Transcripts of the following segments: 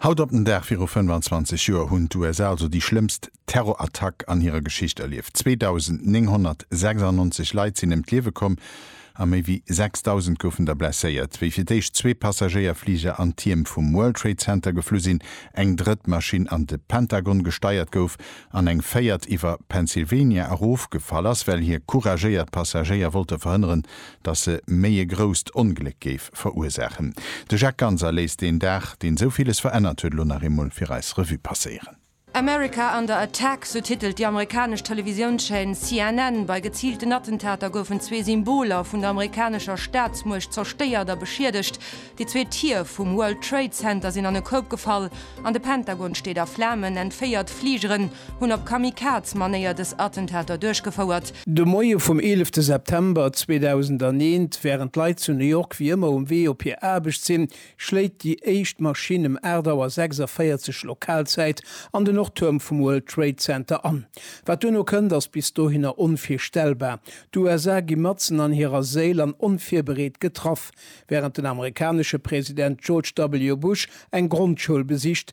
Haut op den Dag viru 25 Joer hunn d'USA also déi schlëmmst Terrorattack an hirer Geschicht erlieft. 2.996 Leit sinn ëm d'Liewe komm a méi wéi 6.000 goufen der blesséiert, wéi fir d'éischt zwee Passagéierfliger an d'Tierm vum World Trade Center geflu sinn, eng drëtt Maschinn an de Pentagon gesteiert gouf an eng véiert iwwer Pennsylvania erofgefall ass, well hir couragéiert Passagéier wollte verhënneren, datt se méi e grousst Ongléck géif verursaachen. De Jacques Ganser léisst deen Dag, deen esou villes verännert huet, elo nach eemol fir eis Revue passéieren. America under attack, sou titelt déi amerikanesch Televisiounschaîne CNN. Bei geziilten Attentater goufen zwee Symboler vun der amerikanescher Staatsmuecht zerstéiert a beschiedegt. Déi zwee Tier vum World Trade Center sinn an e Koup gefall an de Pentagon steet a Flamen. Entféiert Fligeren hunn op Kamikaz-Manéier dës Attentater duerchgefouert. De Moie vum 11 September 2001, wärend d'Leit zu New York wéi ëmmer um Wee op hir Aarbecht sinn, schléit déi éischt Maschinn ëm 8 Auer 46 Lokalzäit an de Nordtuerm vum World Trade Center an. Wat duerno kënnt, ass bis dohinner onvirstellbar. D'USA gi matzen an hirer Séil an onvirbereet getraff. Wärend den amerikanesche President George W. Bush eng Grondschoul besicht,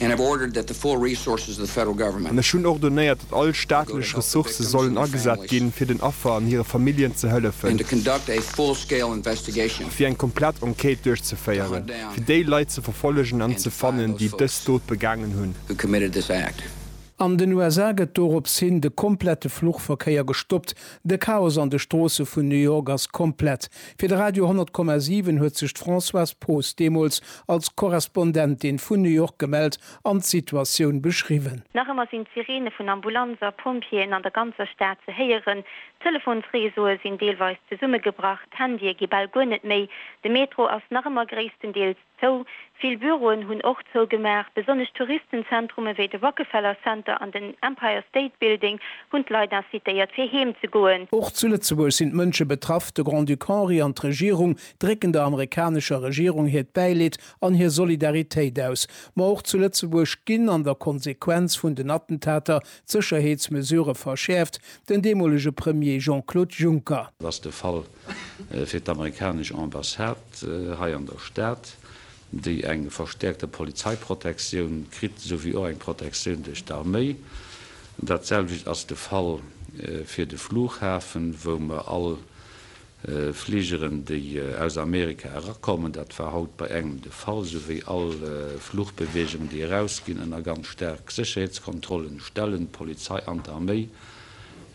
And have ordered that the full resources of the Federal Government. An ech hunn ordonéiert, datt all staatlech Ressourcë sollen agesat ginn, fir den Affer an hire Familljen ze hëllefen. And to conduct a full-scale investigation. A fir eng komplett Enquête duerchzeféieren, fir déi Leit ze verfollegen an ze fannen, déi dës Dot begaangen hunn. Who committed this act. An den USA gëtt dorops hin de komplette Fluchverkéier gestoppt. De Chaos an de Stroosse vun New York ass komplett. Fir de Radio 100 Komma 7 huet sech d'Françoise Poos deemools als Korrespondentin vun New York gemellt an d'Situatioun beschriwwen. Nach ëmmer sinn d'Sireene vun Ambulanzer, Pompjeeën an der ganzer Stad ze héieren. D'Telefonsreseaue sinn deelweis zesummegebrach, d'Handye gi bal guer net méi. De Metro ass nach ëmmer gréisstendeels. zou. Vill Büroen hunn och zougemaach. Besonnesch Touristenzentrume wéi de Rockefeller Center an den Empire State Building hunn d'Leit incitéiert, fir heem ze goen. Och zu Lëtzebuerg sinn d'Mënsche betraff. De Grand-Duc Henri an d'Regierung drécken der amerikanescher Regierung hiert Bäileed an hir Solidaritéit aus. Ma och zu Lëtzebuerg ginn an der Konsequenz vun den Attentater d'Sécherheetsmesurë verschäerft. Den deemolege Premier Jean-Claude Juncker. Ass de Fall fir d'amerikanesch Ambassade hei an der Stad, déi eng verstäerkte Polizeiprotektioun kritt, esouwéi och eng Protektioun duerch d'Arméi. Dat selwecht ass de Fall fir de Flughafen, wou mer all Fligeren, déi aus Amerika erakommen, dat war haut bei engem de Fall, esouwéi all Flugbeweegungen, déi erausginn, ënner ganz staark Sécherheetskontrollen stellen, d'Polizei an d'Arméi.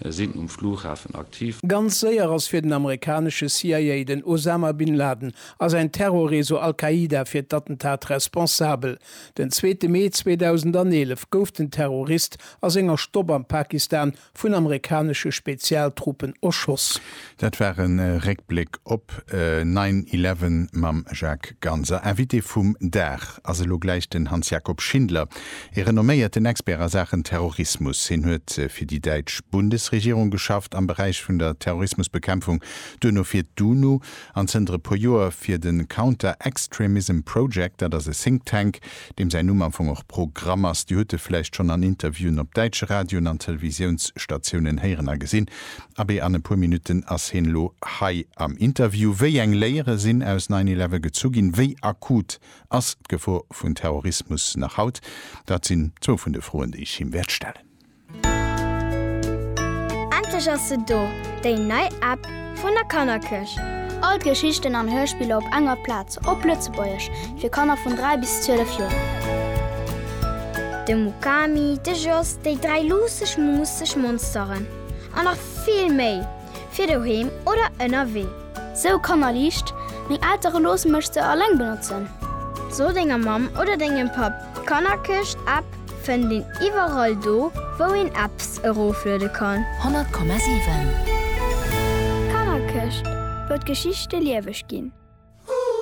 sinn um Flughafen aktiv. Ganz séier ass fir den amerikanesche CIA, den Osama Bin Laden a säin Terrorreseau Al-Qaida fir d'Attentat responsabel. Den zweete Mee 2011 gouf den Terrorist a senger Stopp am Pakistan vun amerikanesche Spezialtruppen erschoss. Dat war e Réckbléck op Nine Eleven mam Jacques Ganser. Invité vum Dag ass elo gläich den Hans-Jakob Schindler, ee renomméierten Expert a Saachen Terrorismus. Hien huet fir déi däitsch Bundesregierung geschafft am Beräich vun der Terrorismusbekämpfung, duerno fir d'UNO an zënter e puer Joer fir de Counter-Extremism Project, dat ass e Think Tank, deem säin Numm am Fong och Pro-gramm ass, Dir hutt e vläicht schonn an Interviewen op däitsche Radioen an Televisiounsstatiounen héieren a gesinn. Abee, an e puer Minutten ass heen elo hei am Interview. Wéi eng Léiere sinn aus Nine Eleven gezu ginn? Wéi akut ass d'Gefor vun Terrorismus nach haut? Dat sinn zwou vun de Froen, déi ech him wäert stellen. Endlech ass se do, déi nei App vun der Kannerkëch! All d'Geschichten an Hörspiller op enger Plaz, op Lëtzebuergesch, fir Kanner vun 3 bis 12 Joer. De Mukami, de Jos, déi dräi luusseg, muusseg Monsteren an nach vill méi! fir doheem oder ënnerwee. Sou Kannerliicht, Meng Eltere loosse mech se alleng benotzen. So denger Mamm oder dengem Papp, d'Kannerkëscht App fënnt een iwwerall do, wou een Apps erofluede kann. 100,7. D'Kannerkëscht, wou d'Geschichte lieweg ginn.